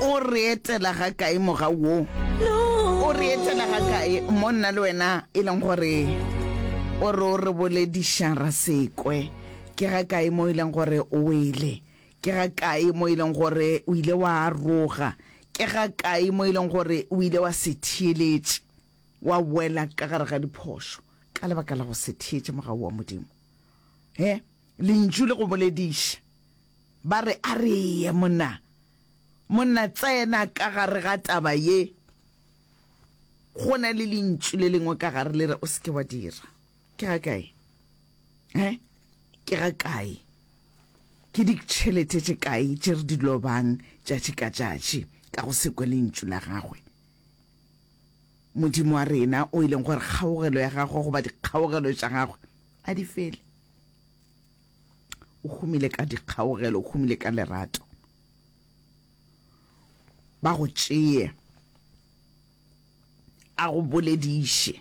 o re etela ga kae moga wo o re etela ga kae mo nna le wena e leng gore o re o re bolediša ra sekwe ke ga kae mo e leng gore o wele ke ga kae mo e leng gore o ile wa aroga ke ga kae mo e leng gore o ile wa se theeletše wa wela ka gare ga diphošo ka lebaka la go se theetše moga wa modimo he lentšu le go bolediša Ba re, A re ye, monna. Monna, tsena ka gare ga taba ye. Go na le lentšu le lengwe ka gare le re, O se ke wa dira. Ke ga kae? He? Ke ga kae? Ke ditšhelete tše kae tše re di lobang tšatši ka tšatši ka go se kwe lentšu la gagwe? Modimo wa rena o e leng gore kgaogelo ya gagwe goba dikgaogelo tša gagwe a di fele. o humile ka dikgaogelo o humile ka lerato ba go tšeye a go bolediše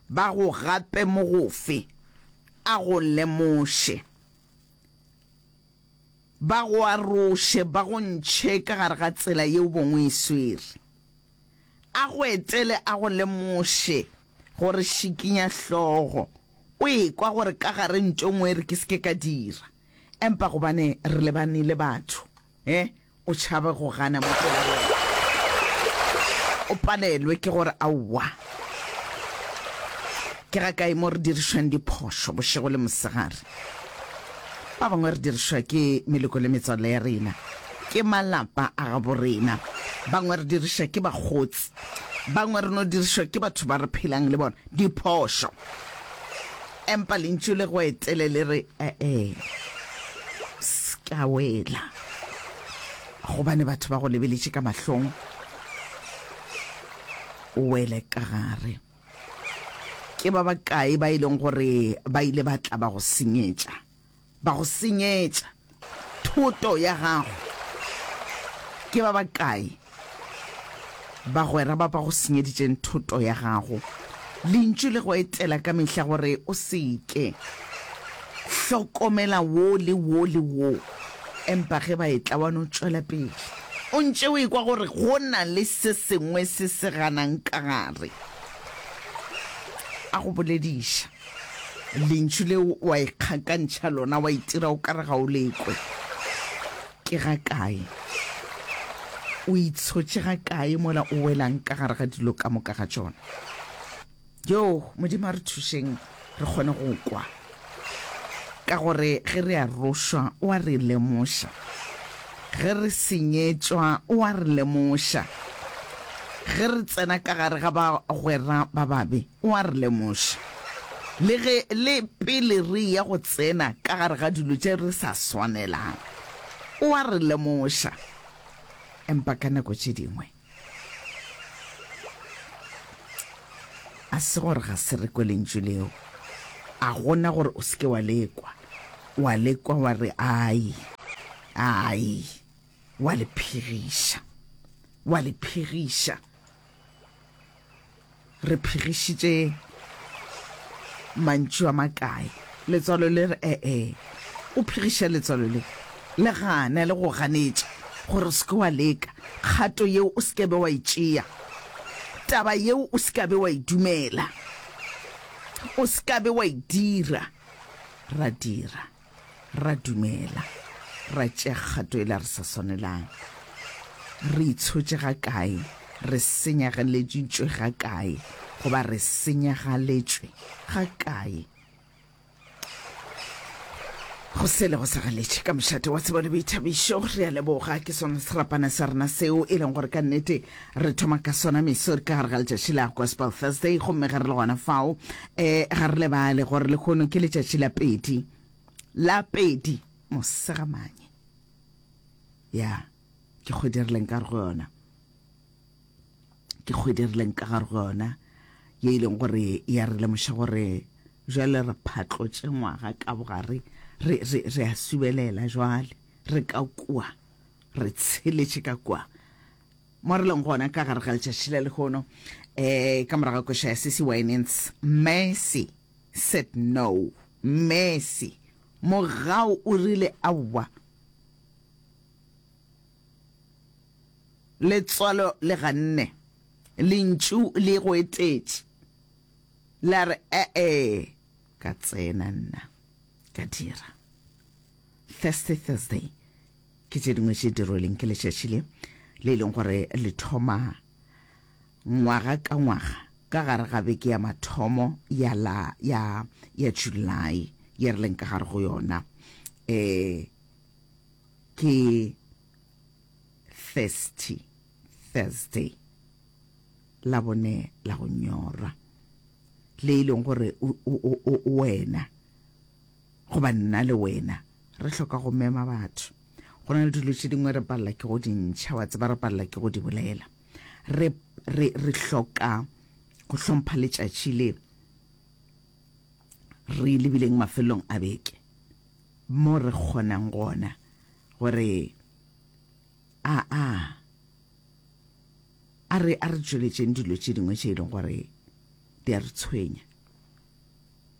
ba go gape mo gofe a go lemoše ba go aroše ba go ntšhe ka gare ga tsela yeo bongwe e swere a go etele a go lemoše gore šikinya hlogo O ekwa gore ka gare ntho engwe e re ke se ke ka dira, empa gobane re lebane le batho, he, o tšhabe go gana mo pela wena. O palelwe ke gore, Aowa. Ke ga kae mo re dirišwang diphošo bošego le mosegare? Ba bangwe re dirišwa ke meloko le metswalle ya rena, ke malapa a gabo rena, bangwe re diriša ke bakgotsi, bangwe re no dirišwa ke batho ba re phelang le bona. Diphošo. Empa Lentšu le go etele le re, E-e, se ka wela, gobane batho ba go lebeletše ka mahlong, o wele ka gare. Ke ba bakae ba e leng gore ba ile ba tla ba go senyetša? ba go senyetša thoto ya gago? Ke ba bakae bagwera ba ba go senyeditšeng thoto ya gago? Lentšu le go etela ka mehla gore o se ke. Hlokomela wo le wo le wo. Empa ge ba etla, wa no tšwela pele. O ntše o ekwa gore go na le se sengwe se se ganang ka gare. A go bolediša. Lentšu leo wa ikgakantšha lona, wa itira o ka re ga o le kwe. Ke ga kae? O itshotše ga kae mola o welang ka gare ga dilo ka moka ga tšona? Yoo, Modimo a re thušeng re kgone go kwa, ka gore ge re arošwa o a re lemoša, ge re senyetšwa o a re lemoša, ge re tsena ka gare ga bagwera ba babe O a re lemoša, le ge le pele re eya go tsena ka gare ga dilo tše re sa swanelang. O a re lemoša. Empa ka nako tše dingwe a se gore ga se re kwe lentšu leo. A gona gore o se ke wa le kwa. O a le kwa wa re, Ai, ai, wa le phegiša. Wa le phegiša. re phegišitše mantšu a makae letswalo le re ee o phegiša letswalo le le gane le go ganetša gore se ke wa leka kgato yeo o se ke be wa e tšea taba yeo o se ke be wa e dumela o se ke be wa e dira ra dira ra dumela ra tšea kgato e la re sa swanelang re itshotše ga kae re senyageleditšwe ga kae goba re senyagaletšwe ga kae go sele go segaletše ka mošate wa tsebo le boithabišo re a leboga ke sona serapana sa rena seo e leng gore ka nnete Re thoma ka sona meso ka gare ga letšatši la Gospel Thursday, gomme ge re le gona fao, um ga re lebale gore lehono ke letšatši la pedi, la pedi mosegamanye. Ya, ke kgwedi re leng ka gare go yona, ke kgwedi re leng ka gare go yona, ye e leng gore ya re lemoša gore jale re phatlotše ngwaga ka bogare, re, re, re a subelela jwale, re ka kua, re tsheletše ka kua. mo re leng gona ka gare ga letšatši la lehono um ka morago koša ya sesi winans mercy said no mercy mogao o rile aowa letswalo le ganne lentšu le go etetše la re ee ka tsena nna ka dira thursday thursday Ke tše dingwe tše di rweleng ke letšatši le, le e leng gore le thoma ngwaga ka ngwaga ka gare ga beke ya mathomo ya la ya ya July ye re leng ka gare go yona eh ke thirsty Thursday la bone la go nyorwa le e leng gore wena Goba nna le wena re hloka go mema batho. Go na le dilo tše dingwe re palela ke go di ntšha, wa tseba, re palela ke go di bolela. Re, re, re hloka go hlompha letšatši le re lebileng mafelong a beke, mo re kgonang gona gore a, a, a re, a re tšweletšeng dilo tše dingwe tše e leng gore di a re tshwenya.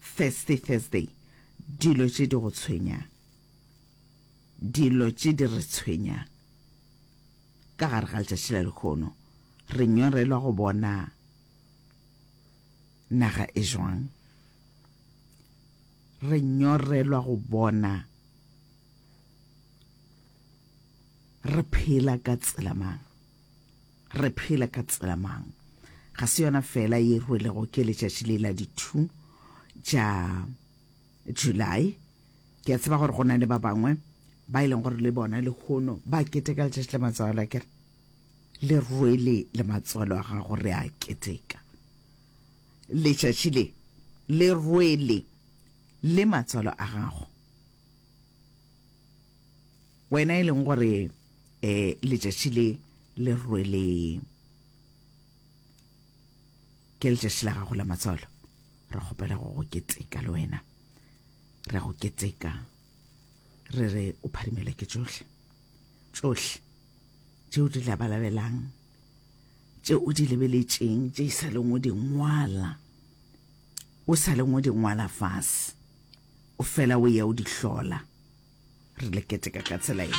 Thursday, Thursday, dilo tše di go tshwenyang, dilo tše di re tshwenyang ka gare ga letšatši la lehono. Re nyorelwa go bona naga e jwang, re nyorelwa go bona re phela ka tsela mang. Re phela ka tsela mang? Ga se yona fela ye rwelego ke letšatši le la di two tša July. Ke a tseba gore go na le ba bangwe ba e leng gore le bona lehono ba keteka letšatši la matswalo a kere le rwele le matswalo a gago re a keteka letšatši le le rwele le matswalo a gago Wena e leng gore e letšatši le le rwele ke letšatši la gago la matswalo re kgopela go go keteka le wena re go keteka re re o pharimelwa ke tšohle tšohle tše o di labalabelang tše o di lebeletšeng tše e sa leng o di ngwala o sa leng o di ngwala fase o fela o eya o di hlola. Re le keteka ka tsela ye.